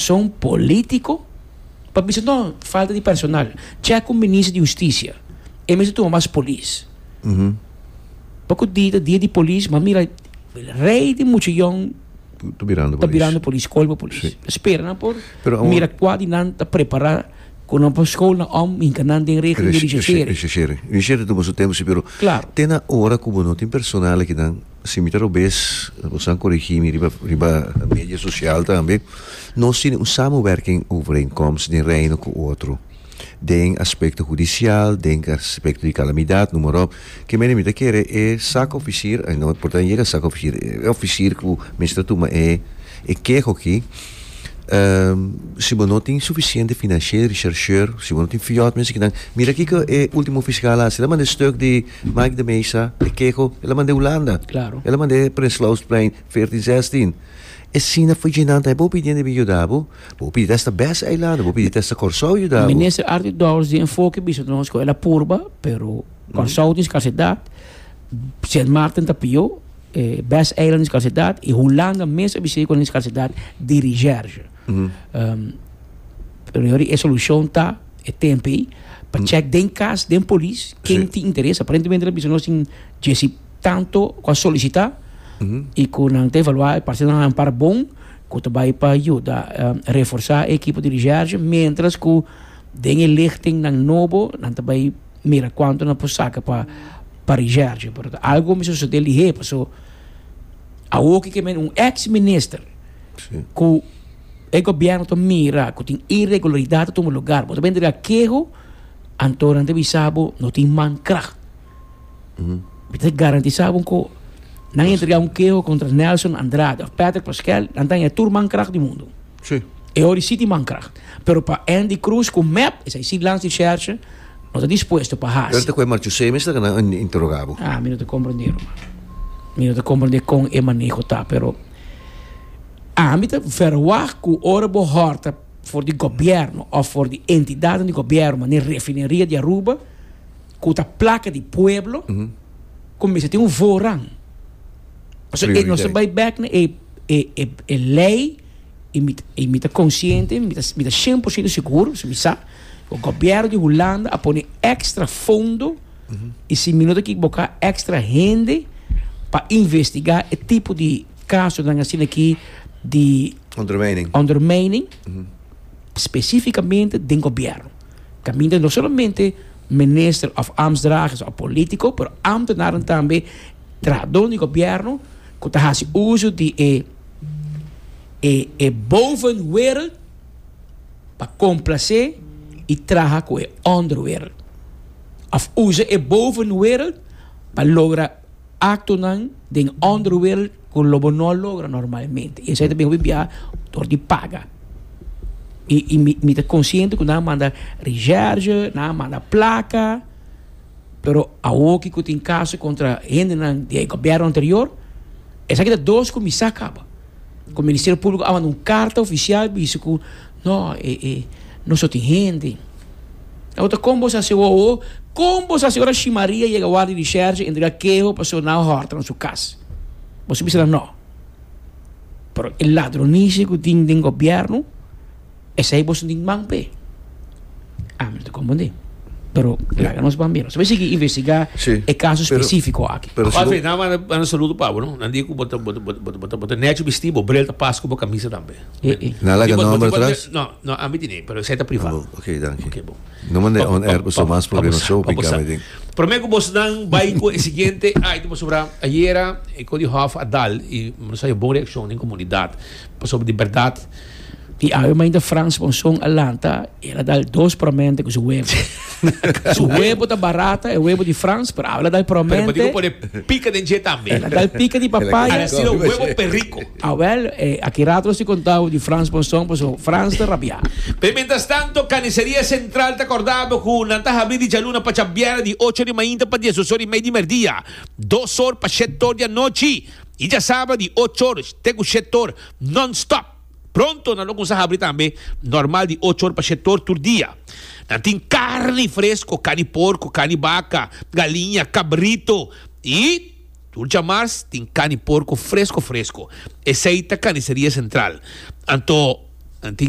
son politico pa bisa no falta di personal check cu minister di husticia e mester tuma mas polis pacu di ta dia di polis ma mira rey di mucha young ta birando polis ta colba polis ta spera nan por mira cua di nan ta prepara cu nan por school nan om hinca nan den regla di rishasheri rishasheri tuma su tempo si pero te nan ora cu bo no tin personal aki nan. Si mi ta robes, bo san korigí mi riba riba medio sosial tambe. Nos tin un samewerking overeenkomst den Reino ku otro den aspekto hudisial, den aspekto di kalamidat, noem maar op. Ke mene mi ta kere e sak ofisir, ai no por ta yega sak ofisir, e ofisir ku mester ta tuma e e keho akí, si bo no tin sufisiente finanshe richersheur, si bo no tin fiòt mester kinan mira kiko e ultimo fiskal a hasi, ta manda e stuk di. Mike de Meza e keho el a mand'é Hulanda. Claro. El a mand'é Prinslausplein 14, 16. E sina for dje nan ta e bo pidi debe yuda bo. Bo pidi ta esta best eilanden, bo pidi ta esta Kòrsou yuda bo. Minister Arthur Dowers di enfoke e bisa nos ku el a purba, pero Kòrsou tin skarsidat, Sint Maarten ta pió, e best eiland tin skarsidat i Hulanda mes a bis'é ku nan tin skarsidat di recherche. Pero yo ri e solushon ta. e tempo ei pa check den cas den polis ken Sí. tin interés. Aparentemente la bisa nos tin Jesse tanto ku a solicita i ku nan ta evaluá e parse nan a ampara bon ku ta bai pa yuda eh, reforsá e ekipo di recherche mientras ku den e lichting nan nobo nan ta bai mira kuantu nan por saka pa pa recherche. Pero algo mester sosodé lihé paso awoke ke men un ex minister ku e gobièrnu ta mira ku tin iregularidat ta tuma lugar, bo ta bini dra keho, anto nan ta bisa bo no tin man krag. Mi ta garantisá bo ku nan entrega un keho kontra Nelson Andrade òf Patrick Pascual, nan ta haña tur man krag di mundu. E ori sí tin man krag. Pero pa Andy Cruz ku mep esei sí lans di shèrsha no ta dispuesto pa hasi. Pero ta ku e marchusei mester ku nan a interogá bo? Ah, mi no ta komprendél, man. Mi no ta komprendé kon e maneho ta, pero. Ami ta verwagt ku ora bo hòrta for di gobièrnu òf for di entidadnan di gobièrnu manera Refineria di Aruba ku ta plaka di pueblo, ku mester tin un voorrang. So e nos ta bai bèk na e e lei i mi i mi ta konsiente, mi ta mi ta shen por siento sigur, pasobra mi sa ku gobièrnu di Hulanda a pone èkstra fondo, Y si mi no ta equivoca extra hende pa investiga e tipo di casonan asina aki di Undermining. undermining specificamente den gobierno. Caminda no solamente minister of ambtsdragers of politico, pero ambtenaren tambe trahador di gobierno cu ta haci uso di e e e bovenwereld pa complace y traha cu e onderwereld. òf usa e bovenwêreld pa logra aktonan den ònderwêreld ku lo bo no a logra normalmente. Esei ta bin hopi bia dor di paga. I i mi mi ta konsiente ku nan a manda reshèrge, nan a manda plaka, pero awoki ku tin kaso kontra hendenan di e gobièrnu anterior, esaki ta dos kuminsá kaba. Ku Ministerio Públiko a manda un karta ofisial bisa ku no nos no tin hende. Awor kon bo sa si awor ho? Kon bo sa si ora Shi Maria yega Wardia di Shèrshe e ntriga keho pasobra nan a hòrta nan su kas? Bo si bisa nan no. Pero e ladronisi ku tin den gobièrnu. Esei boso tin man p'e? Ami no ta kompundí. Pero laga nos bambia. Nos a sigui investigá e kaso spesífiko aki. Anyway, nan manda un saludo pa bo, no. Nan di ku bo ta, bo ta, bo ta, bo ta nechi bistí bo bril ta pas ku bo kamisa tambe. Nan laga nòmber atras? No, no, ami tene, pero esei ta privá. Bo, ok, danki. Ok, bo. No mand'é on air pasobra mas problema shou piká mi den. Promé ku boso nan bai ku e siguiente item pasobra ayera e Cody Hoff a dal i nos a haña bon reakshon den komunidat pasobra di bèrdat, Di awe mainta Frans pa un son a lanta, el a dal dos promente ku su webo. Su webo ta barata, e webo di Frans, pero awe el a dal promente. Pero Batico pone pica den dje tambe. El a dal pica di papaya. Al a sido webo perrico. Awel, e aki rato nos tin contabo di Frans pa un son, paso Frans ta rabia. Pero mientras tanto, Carniceria Central ta cordabo cu nan ta habri di djaluna pa djabiera di ocho ori mainta pa diesdos ori mei di merdia, dos or pa shet or di anochi y djasaba di och or te cu shet or. non-stop. Pronto nan lo cuminsa habri tambe normal di ocho or pa shet or tur dia. Nan tin carni fresco, carni di porco, carni di baca, galiña, cabrito y tur djamars tin carni di porco fresco fresco. Esey ta Carniceria Central. Anto nan tin.